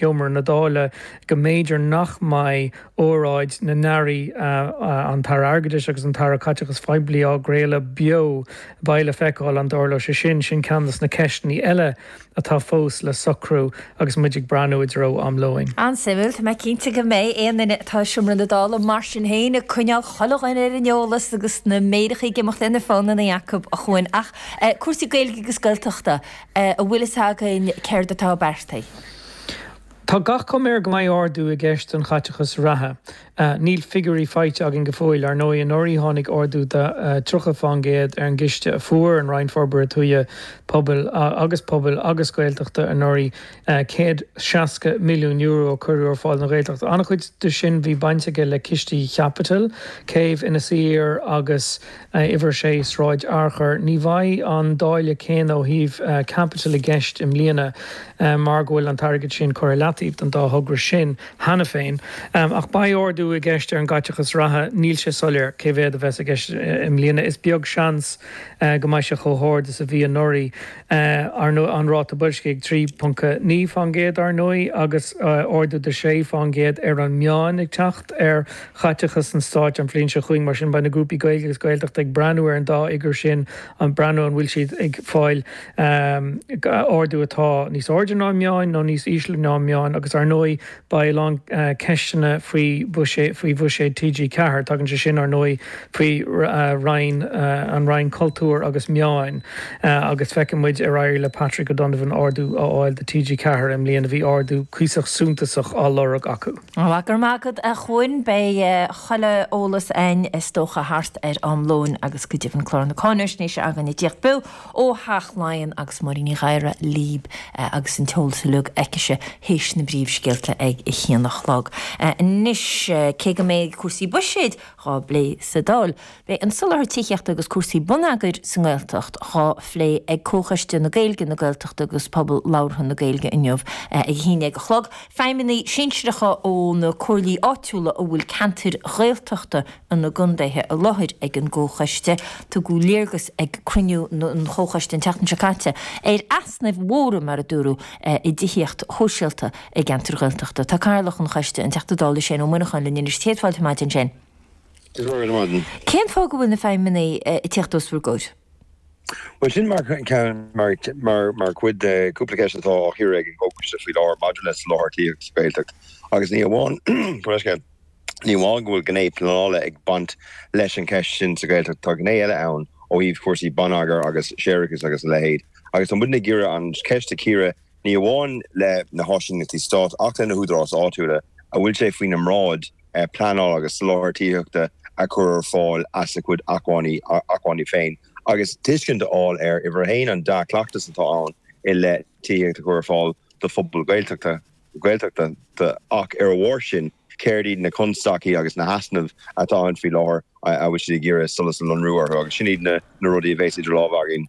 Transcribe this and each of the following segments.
sheomra na Dála go mb'fhéidir nach mbeidh óráid na n-airí, an tAire Airgeadais agus an tAire Caiteachais Phoiblí, á gcraoladh beo. Beidh le feiceáil an dtarlóidh sé sin. Sin ceann de na ceisteanna eile atá fós le socrú agus muid ag breathnú i dtreo am lóin. An-suimiúil. Tá mé cinnte go mbeidh aon duine atá i seomra na Dála mar sin féin ag coinneáil chuile dhuine ar an eolas agus na méaracha ag imeacht ar na fónanna acu, a Chúain. Ach cúrsaí Gaeilge agus Gaeltachta, an bhfuil fhios againn céard atá beartaithe. Tá gach cuma air go mbeidh ardú i gceist don chaiteachas reatha. Níl figiúirí faighte againn go fóill. Ar ndóigh, anuraidh tháinig ardú de 30 fán gcéad ar an gciste a fuair an Roinn Forbartha Tuaithe, Pobail agus Pobail agus Gaeltachta anuraidh, €160 milliún a cuireadh ar fáil don Ghaeltacht. An-chuid de sin bhí baint aige le cistí chaipitil, Céibh Inis Oírr agus. a, Uimhir 6 Sráid Fhearchair. Ní bheidh an dáileadh céanna ó thaobh caipitil i gceist i mbliana mar go bhfuil an t-airgead sin curtha i leataobh don dá thogra sin cheana féin. Ach beidh ardú i gceist ar an gcaiteachas reatha. Níl sé soiléir cé mhéad a bheas i gceist i mbliana. Is beag seans go mbeidh sé chomh hard is a bhí anuraidh, ar ndóigh. An ráta boilscigh ag 3.9 fán gcéad, ar ndóigh, agus ardú de sé fán gcéad ar an meán ag teacht ar chaiteachas an stáit an bhliain seo chugainn. Mar sin, beidh na grúpaí Gaeilge agus Gaeltachta ag breathnú ar an dá fhigiúr sin, ag breathnú an bhfuil siad ag fáil ardú atá níos airde ná an meán nó níos ísle ná an meán. Agus, ar ndóigh, beidh a lán ceisteanna faoi bhuiséad TG4. Tagann sé sin, ar ndóigh, faoi Roinn, an Roinn Cultúir agus Meán. Agus feicfidh muid ar éirigh le Patrick O'Donovan ardú a fháil do TG4 i mbliana. Bhí ardú cuíosach suntasach á lorg acu. Bhuel, go raibh maith agat, a Chúain. Beidh chuile eolas a'ainn, is dócha, thart ar am lóin agus go deimhin clár na cáinaisnéise againn ag tíocht beo ó Theach Laighean agus Máirín Ní Ghadhra, libh, agus an t-eolas uiliug aicise théis na bpríomhscéalta ag a haon a chlog. Anois, cé go mbeidh cúrsaí buiséid dhá bplé sa Dáil, Beidh an soláthar tithíochta agus cúrsaí bonneagair sa nGaeltacht dhá phlé ag Comhchoiste na Gaeilge, na Gaeltachta agus Pobal Labhartha na Gaeilge inniu ag 11 a chlog. Feidhmeannaigh sinsearacha ó na comhairlí áitiúla a bhfuil ceantair Ghaeltachta ina gcondaetha i láthair ag an gComhchoiste. Tugadh léargas ag cruinniú an Chomhchoiste an tseachtain seo caite ar easnaimh mhóra, mar a dúradh, i dtithíocht shóisialta i gceantair Ghaeltachta. Tá Cathaoirleach an Choiste, an Teachta Dála Shane Moynihan linn anois. Céad fáilte ar maidin, Shane. Go raibh maith agat. Cén fáth go bhfuil na feidhmeannaigh ag tíocht os bhur gcomhair? Bhuel, sin mar cheann, mar chuid de chúpla ceist atá á chíoradh ag an gComhchoiste faoi láthair maidir le soláthar tithíochta sa Ghaeltacht agus ní amháin go raibh sé, ní amháin go bhfuil gné pleanála ag baint leis an cheist sin sa Ghaeltacht, tá gné eile ann ó thaobh cúrsaí bonneagair agus séarachais agus a leithéid agus tá muidne ag iarraidh an cheist a chíoradh ní amháin le na háisíneachtaí stáit ach le na húdaráis áitiúla a bhfuil sé faoina mbráid pleanáil agus soláthar tithíochta a chur ar fáil as a gcuid acmhainní féin agus tuiscint a fháil ar, uimhir a haon, an dea-chleachtas atá ann i leith tithíocht a chur ar fáil do phobail Ghaeltachta ach, ar a bharr sin, céard iad na constaicí agus na heasnaimh atá ann faoi láthair a bhfuil siad ag iarraidh solas a lonrú orthu agus sin iad na rudaí a bheas idir lámha againn.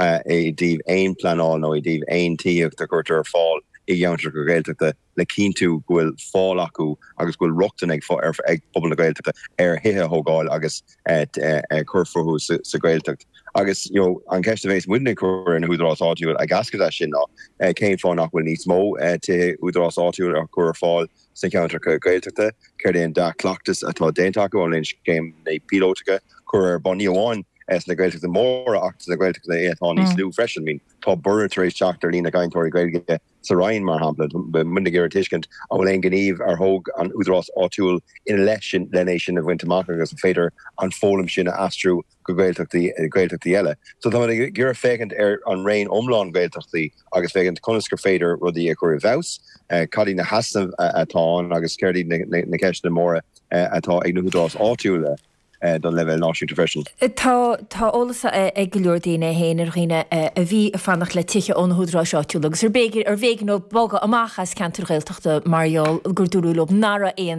i dtaobh aon phleanáil nó i dtaobh aon tithíocht a chuirtear ar fáil i gceantracha Gaeltachta le cinntiú go bhfuil fáil acu agus go bhfuil rochtain ag pobal na Gaeltachta ar thithe a thógáil agus a chur fúthu sa Ghaeltacht. Agus an cheist a bhéas muidne ag cur ar na húdaráis áitiúil ag eascairt as sin ná cén fáth nach bhfuil níos mó tithe údaráis áitiúil á chur ar fáil, sna ceantracha Gaeltachta, céard é an dea-chleachtas atá déanta acu, an bhfuil scéimeanna píolótacha curtha ar bun, ní amháin sna Gaeltachta móra ach sna Gaeltachta atá níos lú freisin. Tá borradh tar éis teacht ar líon na gcainteoirí Gaeilge sa Rinn, mar shampla. Beidh muidne ag iarraidh tuiscint an bhfuil aon ghníomh ar thóg an údarás áitiúil ina leith sin le é sin a bhaint amach agus an féidir an foghlaim sin a aistriú go Gaeltachtaí eile. So tá muid ag iarraidh féachaint ar an raon iomlán Gaeltachtaí agus féachaint conas gur féidir rudaí a chur i bhfeabhas, cad iad na heasnaimh atá ann agus céard iad na ceisteanna móra atá ag na húdaráis áitiúla don leibhéal náisiúnta freisin. Tá eolas ag go leor daoine, fhéin ar dhaoine a bhí ag fanacht le tithe ó na húdaráis áitiúla agus ar b'éigean dóibh bogadh amach as ceantair Ghaeltachta mar gheall gur dúradh leo nach raibh aon